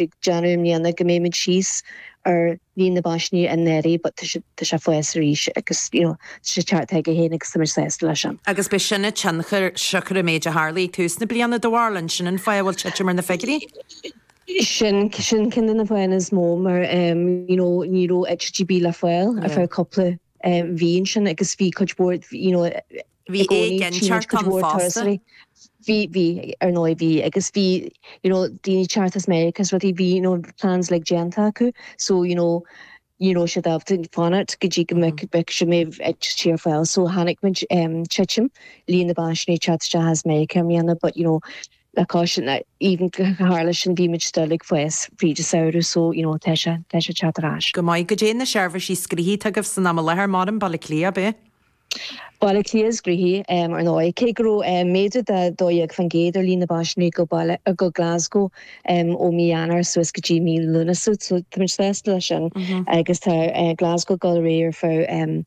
ag déanamh i mbliana go mbeimid síos ar líon na bpaisinéirí but tá sé ag fás arís agus you know tá sé ag teacht chuige féin agus táimid sásta leis sin. Agus beidh sin ag tionchar siocair an méid a tharlaigh ag tús na bliana do bharúil, an sin an fáth a bhfuil titim ar na figiúirí. Sin sin ceann de na fáthanna is mó mar em you know ní raibh eitiltí le fáil ar feadh cúpla em mí ansin agus bhí cuid mhór you know bhí éiginnteacht ann fosta. bhí, bhí, ar ndóigh bhí agus bhí you know daoine ag teacht as Meiriceá is rudaí bhí you know plans like déanta acu so you know ní raibh siad ábalta fanacht go dtí go mbeadh na heitiltí ar fáil so chonaic muid em titim líon na bpaisinéirí teacht isteach as Meiriceá i mbliana but you know le cois na even go tharla sin bhí muid still ag fás fríd an samhradh so you know tá sé tá sé teacht ar ais. Go maith. Caidé na seirbhísí is gnoithí agaibh san am i láthair, maidin Baile Átha Cliath, ab ea? Baile Átha Cliath is gnoithí, ar ndóigh. Cé go raibh méadú de 12% ar líon na bpaisinéirí go Baile, go Glasgow ó mí Eanáir suas go dtí mí Lúnasa, táimid sásta leis sin agus tá Glasgow ag dul ar aghaidh ar feadh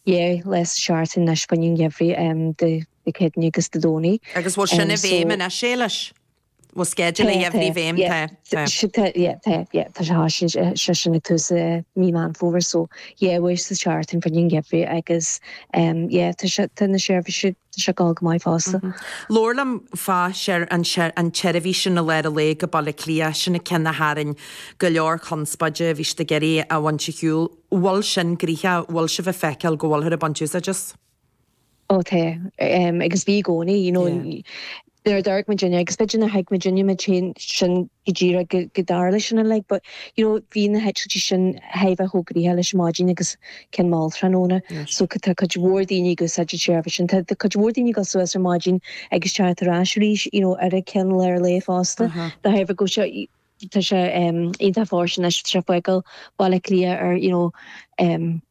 dhá lá sa seachtain anois fá choinne an gheimhridh Dé Céadaoine agus Dé Domhnaigh. Agus bhfuil sin i bhfeidhm anois, Éilis? sceideal an gheimhridh i bhfeidhm. Tá sé sin ag tús mí Meán Fómhair so beidh sé ag teacht fá choinne an gheimhridh agus tá na seirbhísí seo ag dul go maith fosta. Labhair liom fá share an tseirbhís sin i lár an lae go Baile Átha Cliath, sin an ceann a tharraing go leor conspóide, bhí siad ag iarraidh a bhaint ar shiúl, bhfuil sin gnoitheach, bhfuil sibh ag feiceáil go bhfuilthear ag baint úsáid as? Ó tá agus bhí i gcónaí, you know, nuair a d'amharc muid agus b'fhéidir nach ag muid inniu muid féin sin go díreach go go dtarla sin uilig but, you know, bhí na heitiltí sin chóir a bheith chomh gnoitheach leis an mhaidin agus ceann mall tráthnóna. So tá cuid mhór daoine ag úsáid an tseirbhís sin. Tá cuid mhór daoine ag dul suas ar maidin agus teacht ar ais arís, you know, ar an cheann lár lae fosta. Dá thaobh acu seo, Tá sé iontach fóirsteanach is é ag fágáil Baile Átha Cliath ar you know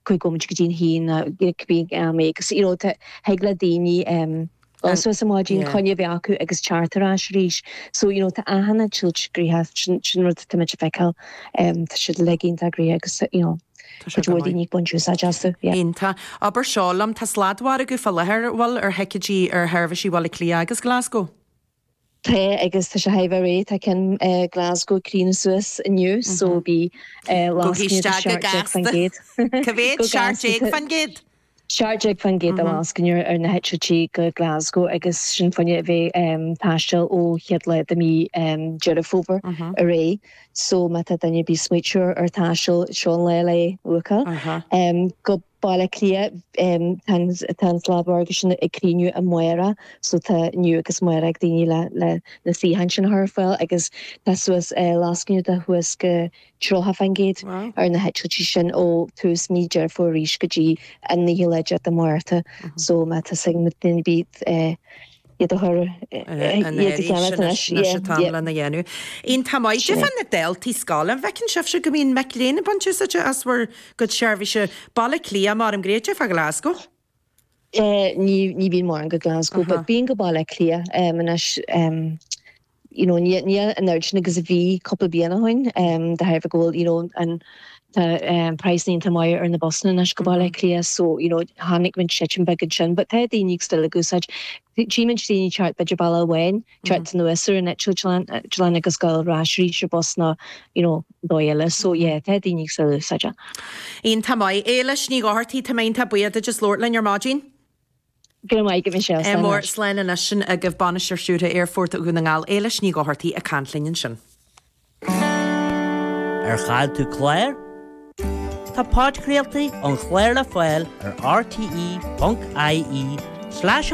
cúig bhomaite go dtí an haon like bhí mé agus you know thig le daoine dul suas ar maidin coinne a bheith acu agus teacht ar ais arís so you know tá achan eitilt gnoitheach sin sin rud atá muid ag feiceáil tá siad like iontach gnoitheach agus you know cuid mhór daoine ag baint úsáid astu yeah. Iontach. Abair seo liom, tá sladmhargadh fá láthair an bhfuil ar thicéidí ar sheirbhísí Bhaile Átha Cliath agus Glasgow? tá agus tá sé chóir a bheith réidh. Tá ceann Glasgow ag críochnú suas inniu so bhí lascaine de seacht déag fan gcéad. Go gasta. Go gasta. Cé mhéad? Seacht déag fan gcéad? Seacht déag fan gcéad de lascaine ar na heitiltí go Glasgow agus sin fá choinne a bheith taisteal ó chéad lá de mhí Deireadh Fómhair ar aghaidh so má tá duine ar bith ag smaoitiú ar taisteal seo an lá lena bhookáil. Go. Baile Átha Cliath, Tá an sladmhargadh sin ag críochnú amárach so tá inniu agus amárach ag daoine le na suíocháin sin a chur ar fáil agus tá suas lascaine de suas go 30% ar na heitiltí sin ó thús mhí Dheireadh Fómhair arís go dtí an 9ú lá de Mhárta so má tá suim ag daoine bídh an éirí sin anois an t-am lena dhéanamh. Iontach maith sibh ar na daltaí scoile. An bhfeiceann sibhse go mbíonn mic léinn ag baint úsáide as bhur gcuid seirbhíse? Baile Átha Cliath, maram, caidé fá Glasgow? Ní bhíonn mórán go Glasgow but bíonn go Baile Átha Cliath anois. you know, ní hé an oiread sin agus a bhí cúpla bliain ó shoin, de thairbhe go bhfuil, you know, an, tá praghsanna iontach maith ar na busanna anois go Baile Átha Cliath, so, you know, tháinig muid titim beag ansin, but tá daoine still ag úsáid, tchí muid daoine ag teacht b'fhéidir bealach amháin, ag teacht anuas ar an eitleán agus ag gabháil ar ais arís ar bus nó, you know, dóigh eile, so yeah, tá daoine still ag úsáid. Iontach maith. Éilís Ní Dhochartaigh, tá mé iontach buíoch duit as labhairt linn ar maidin. Go raibh maith agat Michelle, slán Mór, leis. Slán anois. Sin agaibh, Bainisteoir Stiúrtha Aerfort Dhún na nGall, Éilís Ní Dhochartaigh ag caint linn ansin. Ar chaill tú clár? Tá podchraoltaí an chláir le fáil ar rte.ie/an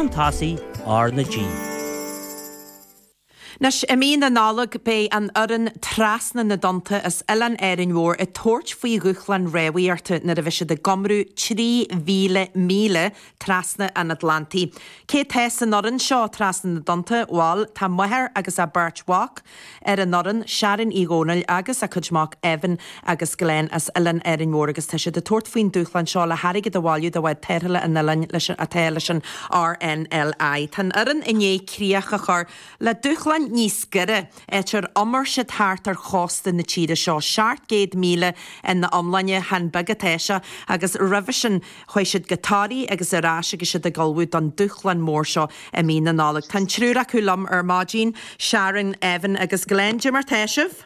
tosaigh, RnaG. Anois, i mí na Nollag, beidh an fhoireann Trasna na dTonnta as Oileán Árainn Mhór ag tabhairt faoi dhúshlán rámhaíochta nuair a bheidh siad ag iomramh 3,000 míle trasna an Atlantaigh. Cé atá san fhoireann seo trasna na dtonnta? Bhal, tá máthair agus a beirt mhac ar an fhoireann, Sharon Uí Dhomhnaill agus a cuid mac, Evan. agus Glen as Oileán Árainn Mhór agus tá siad ag tabhairt faoin dúshlán seo le hairgead a bhailiú do bhád tarrthála an oileáin leis an atá leis an RNLI. Tá an fhoireann i ndiaidh críoch a chur le dúshlán níos giorra, áit ar iomair siad thart ar chósta na tíre seo, 700 míle ina iomláine, chan beag atá seo, agus roimhe sin chuaigh siad go Toraigh agus ar ais agus iad ag ullmhú don dúshlán mór seo i mí na Nollag. Tá an triúr acu liom ar maidin, Sharon, Evan agus Glen. Cad é mar atá sibh?